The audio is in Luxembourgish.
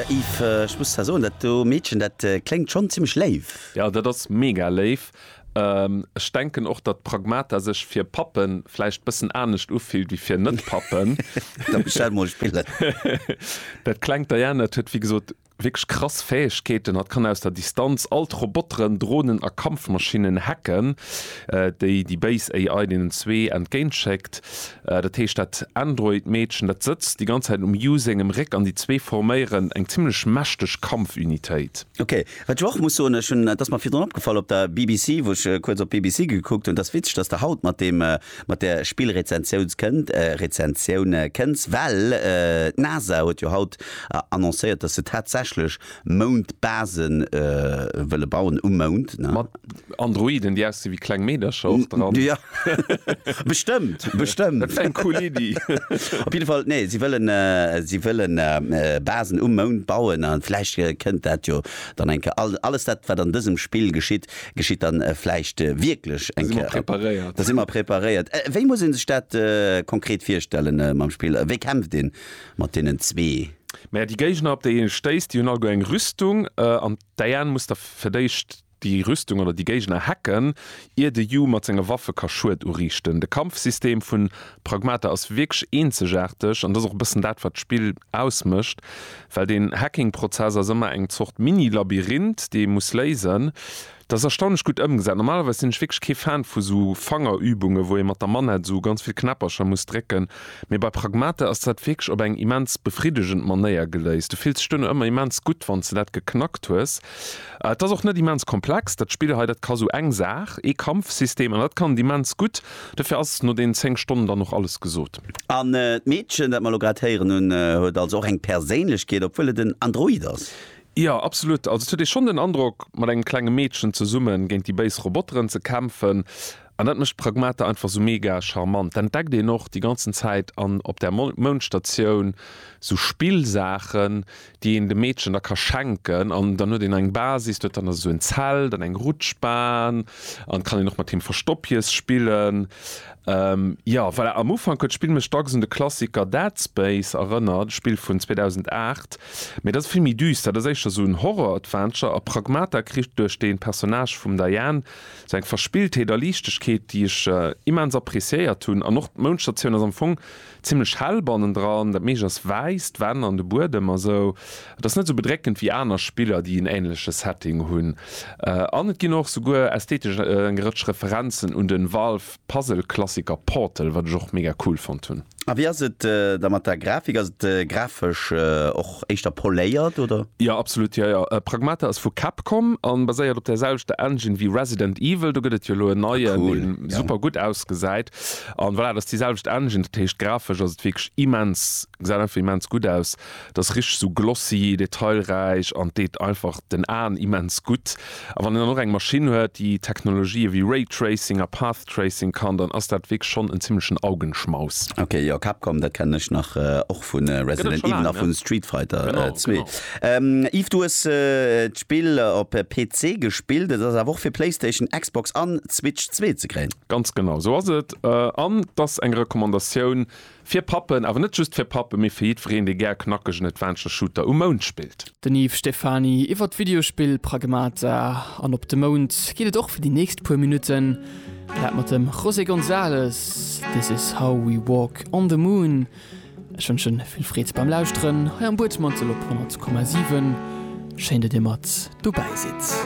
Yves, ech muss der soen, dat do Meedchen, dat kléngt schonn zimmlech léif. Jo dat ass mega léif. Ech denken och datt Pragmata sech fir Pappen vläicht bëssen anescht ufillt wéi fir net Pappen. Da bestell mol Spillen. Dat klengt Diana, et huet wéi gesot wierklech krass Fäegkeeten. Hatt kann aus der Distanz all d'Roboteren, Dronen a Kampfmaschinnen hacken, déi déi béis AI deenen zwee entgéint schéckt. Dat heescht dat Android Meedchen dat sëtzt déi ganz Zäit um Yu sengem Réck an déi zwee forméieren eng zimmlech mächteg Kampfunitéit. Ok. Wat ech och muss soen, ech hunn, et ass mer virdrun opgefall op der BBC, wou ech kuerz op d'BBC gekuckt hunn, et ass witzeg, dass Der haut mat deem, mat där Spillrezensiouns kënnt, Rezensioun kënns, well d'NASA huet jo haut annoncéiert, dass se tatsächlech Moundbase wëlle bauen, um Mound, ne? Androiden déi aussi wéi kleng Meedercher och dran. Ja bestëmmt, bestëmmt. Dat wär eng cool Iddi. Op jidde Fall, nee, si wëllen, si wëlle Basen um Mound bauen a vläicht kënnt dat jo dann eng Kéier. Alles dat, wat an dësem Spill geschitt, geschitt dann vläicht wierklech eng Kéier. Da si mer preparéiert. Da si mer preparéiert. Wéi muss ee sech dat konkret virstellen mam Spill? Wéi kämpft ee mat deenen zwee? Mä déi Géigner, op déi ee stéisst, déi hunn alleguer eng Rüstung an d'Diane muss da fir d'éischt Déi Rüstung oder déi Géigner hacken, ier de Yu mat senge Waffe ka Schued uriichten. De Kampfsystem vun Pragmata ass wierklech eenzegaarteg, an dat ass och e bëssen dat, wat d'Spill ausmécht, well den Hacking-Prozess ass ëmmer eng Zort Mini-Labyrinth, dee ee muss léisen. Dat ass erstaunlech gutt ëmgesat. Normalerweis sinn ech wierklech kee Fan vu sou Fangerübunge wou ee mat der Manette sou ganz vill Knäppercher muss drécken, mee bei Pragmata ass dat wierklech op eng immens befriddegend Manéier geléist. Du fills dech duerno ëmmer immens gutt, wann s de dat geknackt hues. Et ass och net immens komplex, dat Spill hei. Dat ka sou eng Saach, ee Kampfsystem, an dat kann et immens gutt. Dofir ass no deenen 10 Stonnen dann och alles gesot. An d'Meedchen, dat mer elo grad héieren hunn, huet also och eng Perséinlechkeet, obwuel et en Android ass? Jo, absolut. Also et huet ee schonn den Androck, mat engem klenge Meedchen zesummen géint déi béis Roboteren ze kämpfen. An dat mécht d'Pragmata einfach sou mega charmant. D'entdeckt een och déi ganzen Zäit an op där Moundstatioun sou Spillsaachen, déi een dem Meedchen da ka schenken an dann huet een eng Basis, do huet dann esou en Zelt an eng Rutschbahn an kann een och mat him Verstoppjes spillen. Jo voilà, am Ufank huet d'Spill mech dacks un de Klassiker Dead Space erënnert, e Spill vun 2008, mee dat ass vill méi düster. Dat ass éischter esou en Horror-Adventure a Pragmata kritt duerch de Personnage vum Diane sou eng Verspilltheet a Liichtegkeet, déi ech immens appreciéiert hunn an och d'Mounschtertioun ass am Fong Zimlech hell bannendran, dat meescht ass wäiss, d'Wänn an de Buedem a sou. Et ass net sou bedréckend wéi aner Spiller, déi en änleche Setting hunn. An et ginn och souguer ästhetesch eng Rëtsch Referenzen un den Valve-Puzzle-Klassiker Portal, wat ech och mega cool fonnt hunn. A wéi ass et da mat der Grafik? Ass et grafesch och éischter poléiert, oder? Jo, absolut, jo jo. Pragmata ass vu Capcom a baséiert op där selwechter Engine wéi Resident Evil. Do gëtt et jo elo en neien, dee super gutt ausgesäit. An voilà, dat ass déi selwecht Engine, dat heescht grafesch ass et wierklech immens, gesäit einfach immens gutt aus, et ass richteg sou glossy, detailräich an deet einfach den Aen immens gutt. A wann een dann och eng Maschinn huet, déi Technologië wéi Raytracing a Path Tracing kann, dann ass dat wierklech schonn en zimmlechen Augenschmaus. Ok, jo, Capcom, dat kennen ech nach och vu Resident Evil a vu Street Fighter 2. Yves, du hues d'Spill op PC gespillt, et ass awer och fir Playstation, Xbox an Switch zwee ze kréien. Ganz genau esou ass et. An et ass eng Recommandatioun fir Pappen, awer net just fir Pappen, mee fir jiddwereen, dee gär knackegen Adventure Shooter um Mound spillt. Den Yves Stephany iwwer d'Videospill Pragmata. An op de Mound geet et och fir déi nächst puer Minutten. Dat mat dem José González, This is how we walk on the moon. Ech wënsche vill Freed beim Lauschteren hei am Buedmantel op 100,7. Schéin, datt Dir mat dobäi sidd.